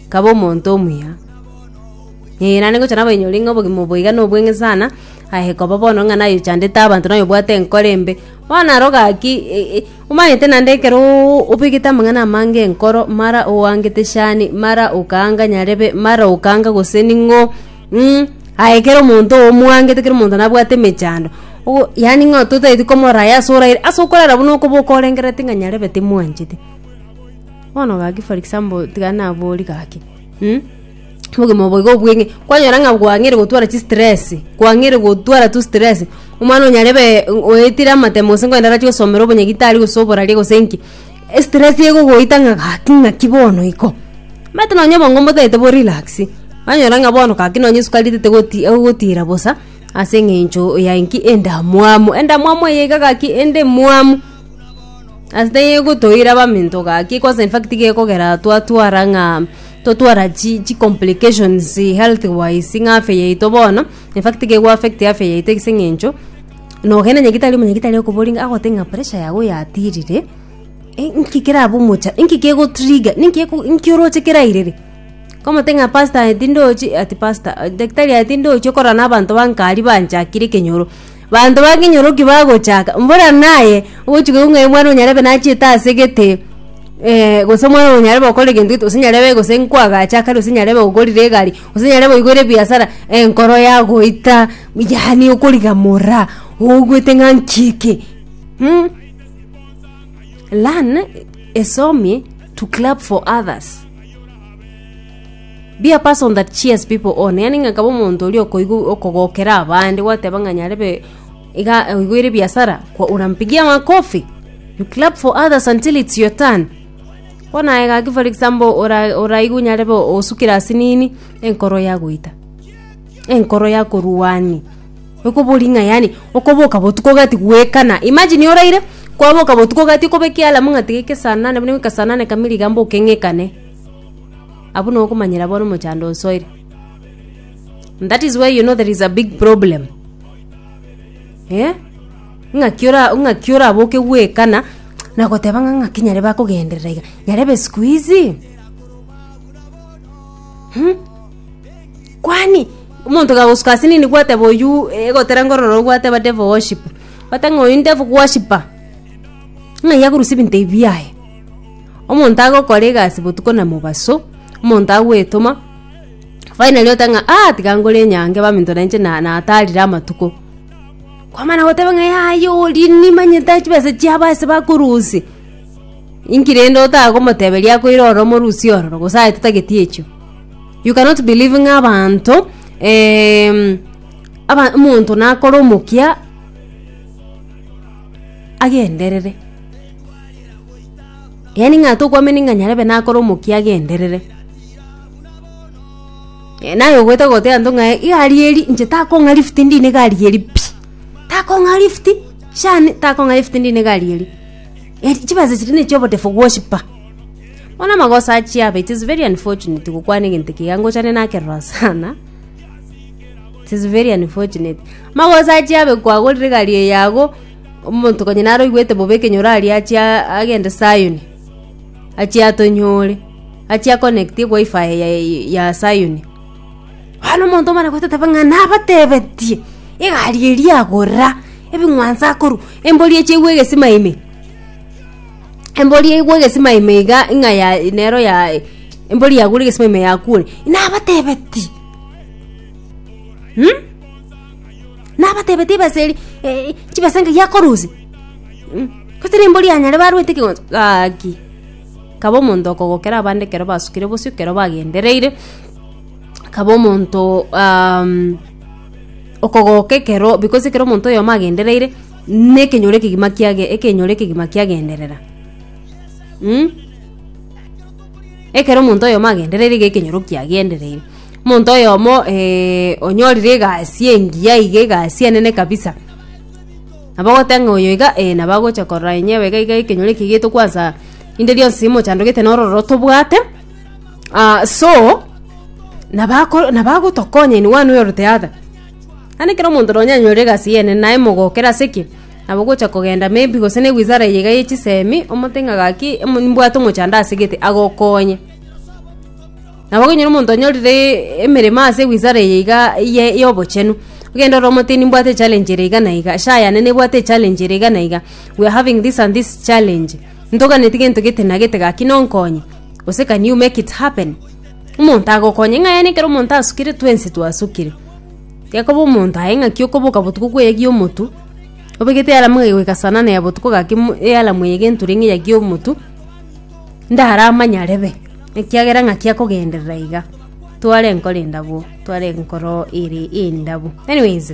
Nkaba omonto omuya. Ee, naende ngocha naba inyore ng'a obogima obo boiga nobweng'e sana, aye koba bono ng'a naye ochandete abanto naye obwate enkoro embe, bono aro gaki e- e omanyete naende ekeroooo obegete amang'ana amange enkoro mara oangete shani mara okaanga nyarebe mara okaanga gose ning'o mh, aye kera omonto oo omwangete kera omonto nabwate emechando, ogo yaani ng'a totaeti komorora aye ase oraire ase okorara buna okoba okorengereti ng'a nyarebe timwanchete. Bono gaki for example tiga nabori gaki mm? obogima obo iga obweng'e kwanyora ng'a gwang'ire gotwara chistress kwang'ire gotwara tu stress omwana onyarebe mm, oetire amatemo gose ngwende arache gosomera obonyagitari gose oboraria gose nki estress egogoita ng'a gaki ng'aki bono iko omanyete nonye obongo mbotaete bo relaxi kwanyora ng'a bono gaki nonye esukari tetegoti egogotira bosa ase eng'encho ya enki endamwamu endamwamu eye iga gaki endemwamu. Ase tegegotoira baminto gaki kwansa in fact gekogera twatwara ng'a totwara chi chi complications health wise ng'a afya yaito bono in fact gego affect afya yaito ase eng'encho nogenda onye gitari omonye gitari okoboria ng'a agote ng'a pressure yago yatirire eh inki kerabe omocha inki kego trigger ninki eko ninki oroche kerairire komote ng'a pastor aye tindochi ati pastor daktari aye tindochi okorana na abanto ba nkari banchakire ekenyoro. Banto bakenyorokia bagochaka, mbora naye ogochika igoro ng'a omwana onyarebe nachete ase egete, eh, gose omwana oyo nyarebe okore egento gete, gose nyarebe gose nkwagacha kare gose nyarebe ogorire egari, gose nyarebe oigore ebiasara, enkoro yagoita, yaani okorigamora, oigwete ng'a nki eke? Mh. Learn, esomie, to clap for others. Be a person that cheers people on yani ng'a nkaba omonto oria okoigu- okogokera abande gwateba ng'a nyarebe iga eh, oigwere ebiasara kwa- unampigia makofi you clap for others until it's your turn bono aye gaki for example ora- oraigu nyarebe osukire ase nini enkoro yagoita enkoro yakoruani ekobori ng'a yani okoboka botuko gati goekana imagine oraire kwaboka botuko gati okobeka ealarm ng'a tiga eke saa nane buna eke eke saa nane kamili iga mboke ng'ekane. Abwo nokomanyera bono mochando osoire. And that is why you know there is a big problem. Eh? ng'aki ora- ng'aki oraboke gwekana nagoteba ng'a ng'aki nyare bakogenderera iga nyarebe siku hizi Hmm? kwani omonto gagosuka ase nini gwateba oyu eh, egotera nkorora oyu gwateba devil worship gwate ng'a oyu ndevu worshiper ng'ai akorusia ebinto ebi biaye Omonto agokora egasi botuko na mobaso, omonto agwetoma, finally oteba ng'a ah tiga nkore enyanke baminto nainche na- natarire amatuko. Kwamana goteba ng'a yaya oria nimanyete aa chibesa chiabo ase bakorusia, inki rende otagomoteberia akoira ororo omorusie ororo gose aye totageti echio. You cannot be leaving abanto aba omonto nakore omokia agenderere. Yaani ng'a tokwamini ng'a nyarebe nakore omokia agenderere, naye ogoeta goteba nto ng'aye egari eri inche takong'a lift ndine egari eri pi, takong'a lift shani takong'a lift ndine egari eri, eri chibesa chiria ne chiobodefu gwosiba. Bono amagoso achia aba it is very unfortunate gokwana egento ekiya ngochane nakerora sana, it is very unfortunate. Magoso achia abe kwagorire egari eyago. Omonto konya naro oigwete bobe ekenyoro aria achie a- agende Sayoni, achie atonyore, achie aconnectie wifi yaye ya Sayoni. Bono omonto omana goeta tebe ng'a nabatebetie egari eria agora, ebing'wanso akorwa, embori eche igwe egesima ime, embori igwe egesima ime iga ng'a ya nero ya embori yagure egesima ime yakuire, nabatebetie mh. Nabatebetie ibesa eri eh, chibesa ng'ai akorusia Mm, gose nembori yanyare barwete ekegonto gaki kaba omonto okogokera abande ekero basukire bosio ekero bagendereire kaba omonto um, okogoka ekero because ekero omonto oyomo agendereire na ekenyoro ekegima kiage ekenyoro ekegima kiagenderera mm? ekero omonto oyomo agendereire iga ekenyoro kiagendereire Omonto oyomo eh, onyorire egasi engiya iga egasi enene kabisa nabo ogote ng'a oyo iga eh, nabo agocha korora inye iga iga ekenyoro eke egeto kwansa rinde rionsi mochandogete na ororo tobwate ah, so nabo ako nabo agotokonya in one way or the other ande ekero omonto nonya anyore egasi eye enene naye mogokera ase ki nabo ogocha kogenda maybe gose ne wizara eye iga ya chisemi omote ng'a gaki emo mbwate omochando asegete agokonye. Nabo gonyora omonto onyorire emeremo ase egwisare eye iga eye y'obochenu, ogende ore omoteni mbwate echallenge ere iga na iga, share yane nebwate echallenge ere iga na iga, we are having this and this challenge, ntoganeti gento gete na gete gaki nonkonye, gose can you make it happen? Omonto agokonye ng'a yaani ekero omonto asukire twensi twasukire. Gekoba omonto aye ng'aki okoboka botuko kweyegi omotu, obegete ealamu egoika saa nane ya botuko gaki mo ealamu eye egenture ng'a eyegi omotu, ndaramanyare be, ekiagera ng'aki akogenderera iga, tware nkore endabo tware nkoro ere endabu anyways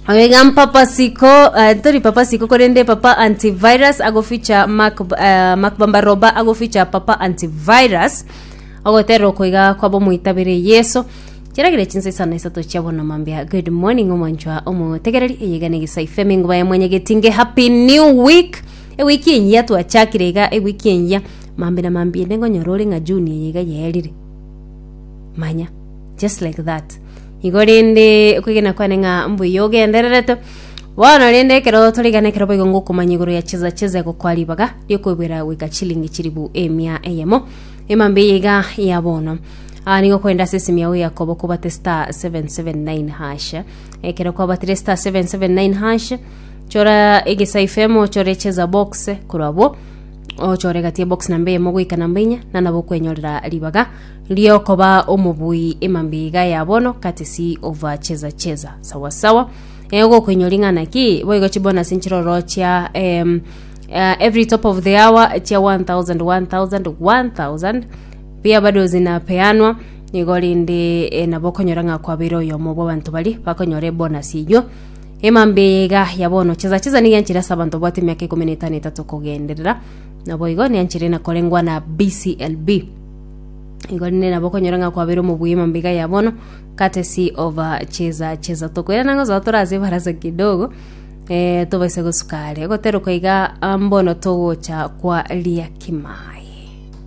oyo iga mpapa siko eh, tori papa siko korende papa antivirus agoficha mark eh, mark bamba roba agoficha papa antivirus ogotera oko iga kwaba omoitabire yeso chiaragire chinsa isano isato chia bono mambia good morning omwanchwa omotegereri eyegane gisa ifeme ngubaye mwanyagetinge happy new week Ewiki eyia twachakire iga ewiki eyia, maambia na maambia inde nkonyora ore ng'a June eye iga yaerire. Manya, just like that. Igo rende okwegena kwane ng'a mbuya ogendererete, bono rende ekero torigana ekero boigo ngokomanya igoro ya cheza cheza egokoa ribaga riokoibwera goika chilingi chilifu emia eyemo. Emambia eye iga ya bono. Ah, nigo kwende ase esimi yao ya koba okobate star 779 hash. Ekero kwabatire star 779 hash, Chora egesaifa emo ochore cheza box korwa abwo ochore gati ya box namba eyemo goika namba inya na nabo okwenyorera ribaga riokoba omobui emambiga ya bono katesi ova cheza cheza sawa sawa eh, gokoinyora ring'ana ki boigo chibonus nchiroro chia em, uh, every top of the hour chia 1000 1000 1000 pia bado zinapeanwa nigo rende eh, nabo okonyora ng'a kwabeire oyomo bw'abanto bari bakonyora ebonus eywo Emambe eye iga ya bono, chesa chesa nigo enchera ase abanto babwate emiaka ikomi na etano etato kogenderera, naboigo nenchera ena korengwa na BCLB. Igo rinde nabo okonyora ng'a kwabeire omobuya emambe iga ya bono, courtesy of uh, chesa chesa. Tokoirana ng'a ozoa tore ase ebarasa kidogo, eh, tobaise gosuka are. Egoterokwa iga ah, mbono togocha kwa Liakimae.